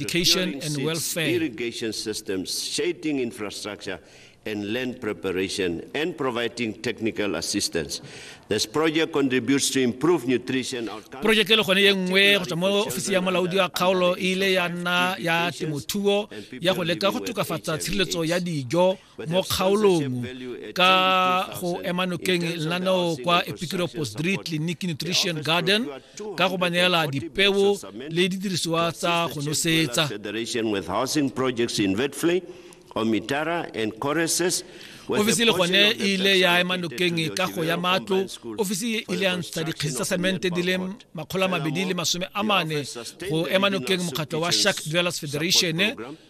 education and welfare. Irrigation systems, shading infrastructure, and land preparation and providing technical assistance. This project contributes to improved nutrition outcomes. Project le gone ye nngwe go tswa mo ofisi ya molaodi wa kgaolo e ile ya nna ya temothuo ya go leka go tokafatsa tshireletso ya dijo mo kgaolong ka go ema nokeng lenaneo kwa epikiro postdre clinic nutrition garden ka go ba neela dipeo le didirisiwa tsa go nosetsa ofisi le gone e ile ya ema nokeng ka go ya matlo ofisi e ile ya ntsha dikgesi tsa semente di le makgolo a mabedi le masome a mane go ema nokeng mokgatlho wa shark dwellers federation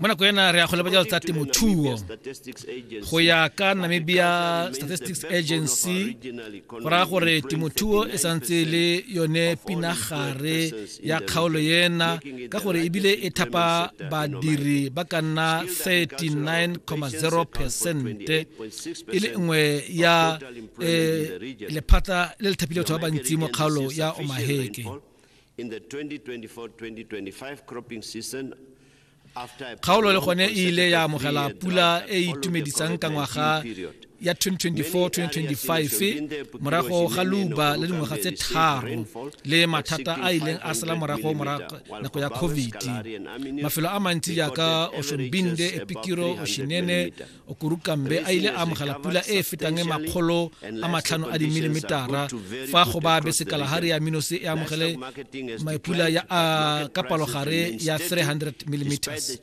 mo nako ena re ya go leba jalo tsa temothuo go ya ka namibia statistics agency go raya gore temothuo e santse le yone pinagare ya kgaolo ena ka gore ebile e thapa badiri ba ka nna 39,0 percent e le nngwe ya eh, lephata le le thapile batho ba bantsi mo kgaolo ya omaheke In the 2024-2025 cropping season, kgaolo le gone e ile ya amogela pula e e itumedisang ka ngwaga ya 2024-2025 morago ga luba le dingwaga tse tharo le mathata a ileng a sala morago nako ya covid mafelo a mantsi jaaka oshonbinde epikiro oshinene okurukambe a ile a amogela pula e e fetang e makgolo a matlhano a dimilimetara fa go ba be sekalahari ya minose e amogele maipula ya a ka palogare ya 300 millimeters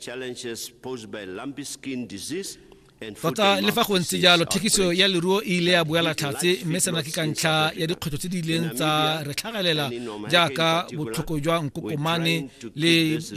tota le fa go ntse jalo thekiso ya leruo e ile ya boela tlhatse mme sena ke ka ntlha ya dikgwetlho tse di ileng tsa re tlhagelela jaaka botlhoko jwa nkokomane le